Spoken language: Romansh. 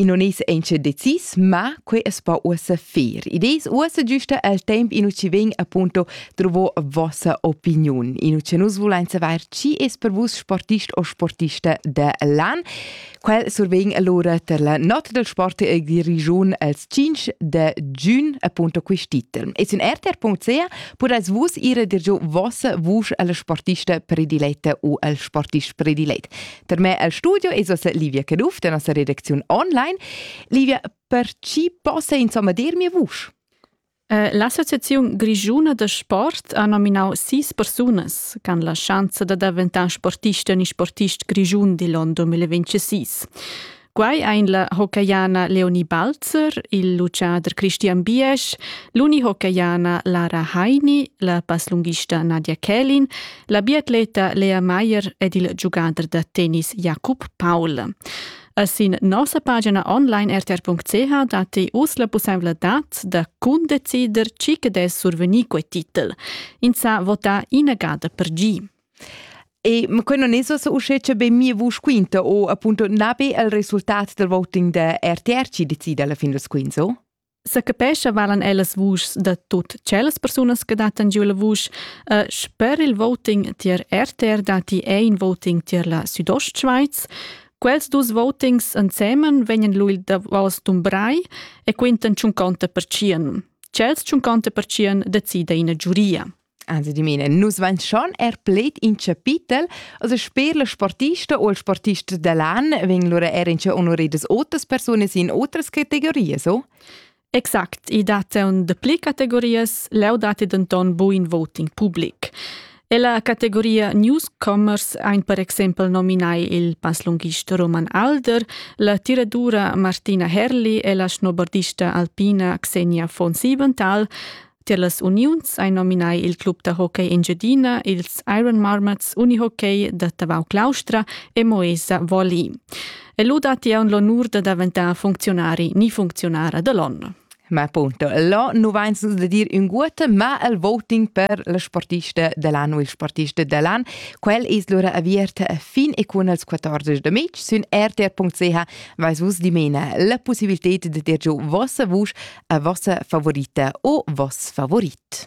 I non es auncha decis, ma quei es po uossa fer. Idees uossa giusta al temp in ci ven appunto trovo vossa opiniun. In ci nus vulein saver chi es per vus sportist o sportista de l'an. Quel survegn allora per la notte del sport e di region als 5 de giugno appunto quest'iter. E in rtr.ch podes vus ire dir giu vossa vuce alla sportista prediletta o al sportist predilet. Per me el studio es ossa Livia Caduff da nossa redacziun online. Livia, per chi possa insomma dir mia vusch? Eh, L'Associazione Grigiuna de Sport ha nominau sis persunas che hanno la chance di diventare sportiste e sportist grigiun di l'on 2026. Quai ein la hockeyana Leonie Balzer, il luciader Christian Biesch, l'unihockeyana Lara Heini, la passlunghista Nadia Kählin, la biatleta Lea Meyer ed il giugader da tennis Jakob Paul. E sin nossa pagina online rtr.ch datti uss la pussevladad da cundecider chi che dess survegnir quei titel. Ins sa vota ina gada per gi. E ma quei non es ussa uschè che be mia vusch quinta o appunto na be il resultat del voting da RTR chi decide alla fin das quints, o? Sa capescha valan ellas vuschs da tut tschellas persunas che dattan giu la vusch. Uh, sper il voting tier RTR dati è in voting tier la Südostschweiz. Quels dus votings ensemen vegnan lui davos dumbrai e quintan tschunconta per tschien. Chels tschunconta per tschien decida ina giuria. Also di mine, nus vain schon er pled in chapitel, also sper le sportista o il sportista dell'an vegn lura er in che honoridas otras persones in otras categorias, o? Exact, i date un de pli categorias, leu date denton buin voting public. E la categoria newscomers ein per exempel nominai il passlunghist Roman Alder, la tiradura Martina Herli e la snobardista alpina Xenia von Siebenthal, Tier las uniuns ein nominai il club da hockey Engiadina, ils Iron Marmots Unihockey da Tavau Claustra e Moesa Volley. E lu datti aunc l'onur da daventar funcziunari ni funcziunara dall'onn. Ma appunto, là nu vains da dir ün guot, ma il voting per le sportiste dell'anno e il sportiste dell'an, quel es lura aviert fin e cun als 14 de mig sün rtr.ch Vais vus dimena la possibilità de dir giu vossa vusch a vossa favorita o voss favorit.